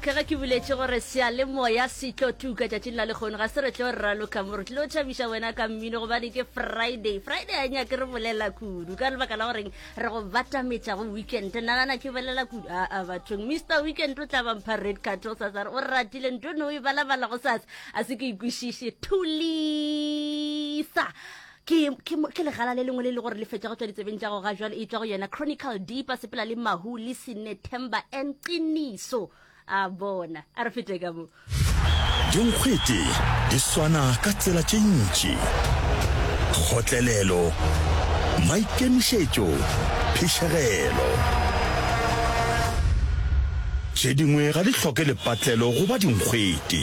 okay ge ke buletše gore seyalemoya se tlo tuka tšatšing la lekgono ga se re tlo raloka mo re tlilo tšhabiša wena ka mmino gobane ke friday friday a nyake re bolela kudu ka lebaka la goreng re go batametša go weekend nagana ke bolela kudu aa bathong mr weekend o tla bampha red cart o sa sare o ratile nto ne o e balabala go sasa a se ke ikwešiše thulisa ke, ke, ke legala le lengwe le le gore le fetša go tšwa ditsebeng tša go ga jwale e tšwa go yena chronicle deepa sepela le mahu le sinethemba and qiniso a bona a re fete ka mo dinkgwete di swana ka tsela tše ntši kgotlelelo maikemišetšo phišegelo tše dingwe ga di hloke lepatlelo goba dinkgwete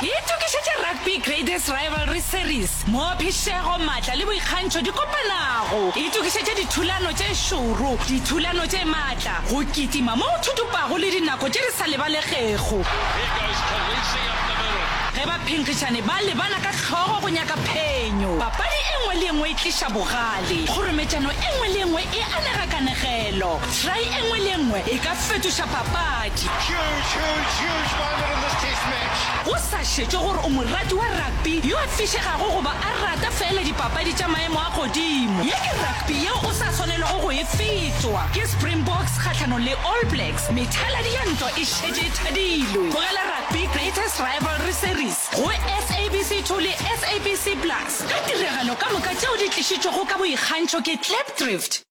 Ke itokišetše Rugby Greatest Rivalry Series, mo phišego, matla le boikgantšho di kopanago. Ke itokišetše dithulano tše šoro, dithulano tše matla, go kitima mo go thutupago le dinako tše di sa lebalegego. Ge baphenkgišani ba lebana ka hlogo go nyaka phenyo, papadi e nngwe le e nngwe e tliša bogale. Kgorometšano e nngwe le e nngwe e anega kanegelo. Try e nngwe le e nngwe e ka fetoša papadi. papadi. Go sa šetšwe gore o morati wa rugby yo a fišegago goba a rata feela dipapadi tša maemo a godimo, ye ke rugby yeo o sa swanelwago go e fetšwa. Ke Springboks kgahlanong le All Blacks, methaladi ya ntwa e šetše e thadilwe. Tlogela rugby Greatest Rivalry Series go SABC 2 le SABC Plus ka tiragalo ka moka tšeo di tlišitšwego ka boikgantšho ke Klipdrift.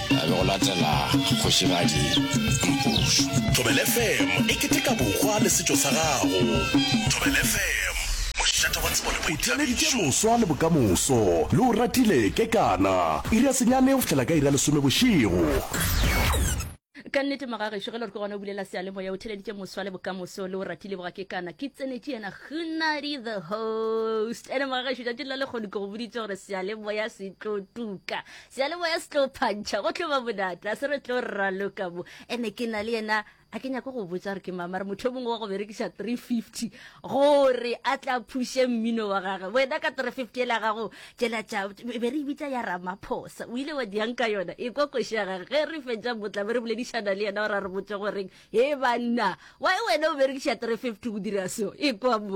a be go latela kgošigadi mpušu thobele fm e keteka bokgwa le setšo sa gago thobele fm mošate wa tsebo le boithabišo o tšweleditše moswa le bokamoso le o ratile kekana iri ya senyane go fihlela ka iri ya lesome bošego Ka nnete Magagešu, ge le re ke gona o bulela seyalemoya, o theleditše moswa le bokamoso le o ratile bogakekana. Ke tsenetše yena Gunadi the host. Ene Magagešu, tšatši la lekgodu ke go boditše gore seyalemoya se tlo tuka. Seyalemoya se tlo phantšha go tlo ba bonata se re tlo raloka mo ene ke na le yena a ke nyako go botsa gore ke mama re motho o mongwe wa go berekiša 350 gore a tla phuše mmino wa gage wena ka 350 ele ya gago tšelatša e be re e bitsa ya ramaphosa o ile wa diang ka yona e kwa koši ya gage ge re fetša motla be re boledišana le yena o ra re botse goreng he banna wa e wena o berekiša 350 go dira seo e kwa mo